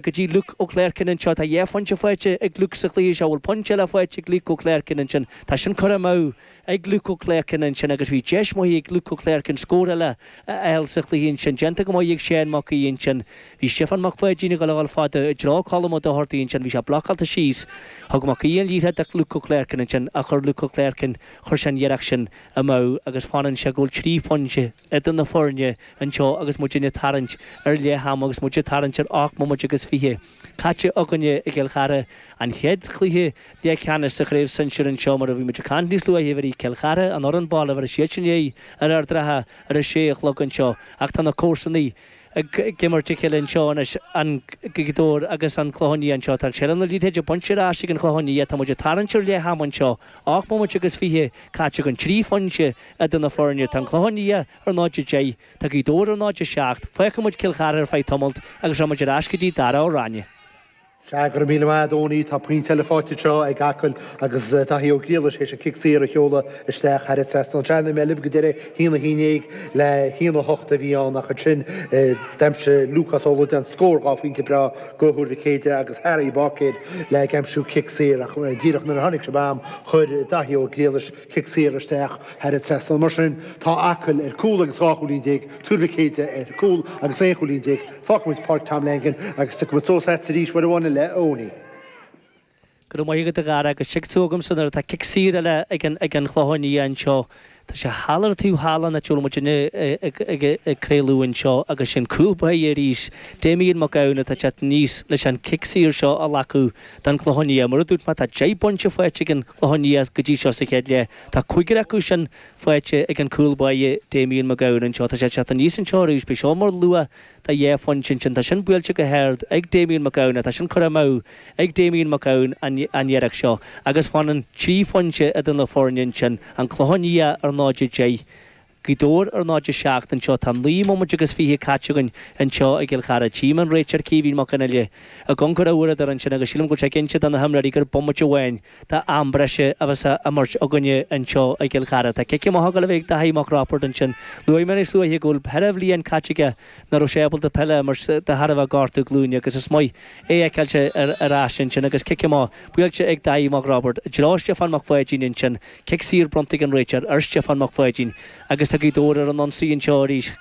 go dtí Luke Ó Cléircinn anseo, tá dhá phointe faighte ag Luke sa chluiche seo, bhfuil pointe eile faighte ag Luke Ó Cléircinn ansin, tá sin curtha amach ag Luke Ó Cléircinn ansin agus bhí deis maith ag Luke Ó Cléircinn scór eile a fháil sa chluiche ansin, déanta go maith ag Séan Mac Aoidh ansin, bhí Stiofán Mac Pháidín ag dul a dhul fada i dtreo Colm Ó Dochartaigh ansin, bhí sé blocálta síos, thug Mac Aoidh an liathróid do Luke Ó Cléircinn ansin ach chuir Luke Ó Cléircinn, chuir sé an iarracht sin amach agus fanann sé go bhfuil trí phointe idir na foirne anseo agus muidne ag tarraingt ar leath ama agus muid ag tarraingt ar ocht mbomaite agus fiche caite againne i gCill Chartha, an chéad chluiche leathcheannais sa Chraobh Sinsir anseo mar a bhí muid ag caint níos luaithe uirthi, Cill Chartha, an fhoireann baile, bheir siadsan aghaidh ar Ard an Rátha ar a sé a chlog anseo ach tá na comharsanaigh ag imirt a chéile anseo anois, Gaoth Dobhair agus an Clochán Liath anseo. Tá seilbh na liathróide bainte ar ais ag an Chlochán Liath. Tá muid ag tarraingt ar leath ama anseo, ocht mbomaite agus fiche caite againn, trí phointe idir na foirne. Tá an Clochán Liath ar náid a deich, tá Gaoth Dobhair ar náid a seacht. Fágfaidh muid Cill Chartha ar feadh tamaillt agus rachaidh muid ar ais go dtí Dara Ó Ráinne. Sea, go raibh míle maith a'd Eoiní, tá pointe eile faighte anseo ag Acaill agus Daithí Ó Griallais théis an cic saor a sheoladh isteach thar an trasnán. Sea, nuair a bhí mé libh go deireadh haon a haon déag le haon a hocht a bhí ann ach ansin d'aimsigh Lúcás Ó Loideáin scór dhá phointe breá do Thuar Mhic Éadaigh agus Harry Bácéir ag aimsiú cic saor ach díreach nuair a tháinig sibh agam chuir Daithí Ó Griallais Cic saor isteach thar an trasnán mar sin, tá Acaill ar cúl agus dhá chúilín déag Tuar Mhic Éadaigh ar cúl agus aon chúilín déag fágfaimid Páirc Tom Langan agus tiocfaimid suas leatsa arís uair amháin eile a Eoiní. Go raibh maith agat, a Dhara, agus tig tú agamsa nuair atá cic saor eile ag an Chlochán Liath anseo. Tá sé thall ar an taobh thall den áit a bhfuil muidinne ag craoladh anseo agus is é an cúl báire arís Damien Mac Gabhann atá ag teacht aníos leis an gcic saor seo a ghlacadh. don Chlochán Liath. Mar a dúirt mé, tá deich bpointe faighte ag an Clochán Liath go dtí seo sa chéad leath. Tá cúigear acu sin faighte ag an gcúl báire Damien Mac Gabhann anseo. Tá sé ag teacht aníos anseo arís. Beidh seo mar luach dhá phointe ansin. Tá sin buailte go hard ag Damien Mac Gabhann. Tá sin curtha amú ag Damien Mac Gabhann an iarracht seo agus fanann trí phointe idir na foirne ansin, An Clochán Liath ar 0-10 Gaoth Dobhair ar 0 7 anseo. Tá naoi mbomaite agus fiche caite againn anseo i gCill Chartha. Tchím an réiteoir Caoimhín Mac Fhionnlaoich ag amhanc ar a uaireadóir ansin agus sílim go bhfuil sé ag inse do na himreoirí gur bomaite amháin d'am breise a bheas á imirt againne anseo i gCill Chartha. Tá cic amach ag dul a bheith ag Dáithí Mac Roibeaird ansin. Luaigh mé níos luaithe go bhfuil péire bliain caite aige nach raibh sé ábalta peil a imirt de thairbhe gortú glúine agus is maith é a fheiceáilt ar ais ansin agus cic amach buailte ag Dáithí Mac Roibeaird i dtreo Stiofán Mac Pháidín ansin. Cic saor bronnta ag an réiteoir ar Stiofán Mac Pháidín agus tá Gaoth Dobhair ar an ionsaí anseo arís.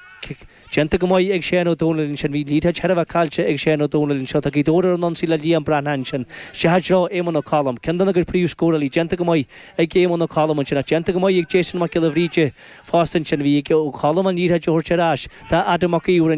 Déanta go maith ag Séan Ó Domhnaill ansin. Bhí an liathróid chóir a bheith caillte ag Séan Ó Domhnaill anseo. Tá Gaoth Dobhair ar an ionsaí le Liam Breathnach ansin. Isteach i dtreo Éamonn Ó Colm. Ceann de na gcuid príomhscórálaí déanta go maith ag Éamonn Ó Colm ansin. Ach déanta go maith ag Jason Mac Giolla Bhríde fosta ansin. Bhí ag Ó Colm an liathróid a thabhairt ar ais do Adam Mac Íomhair.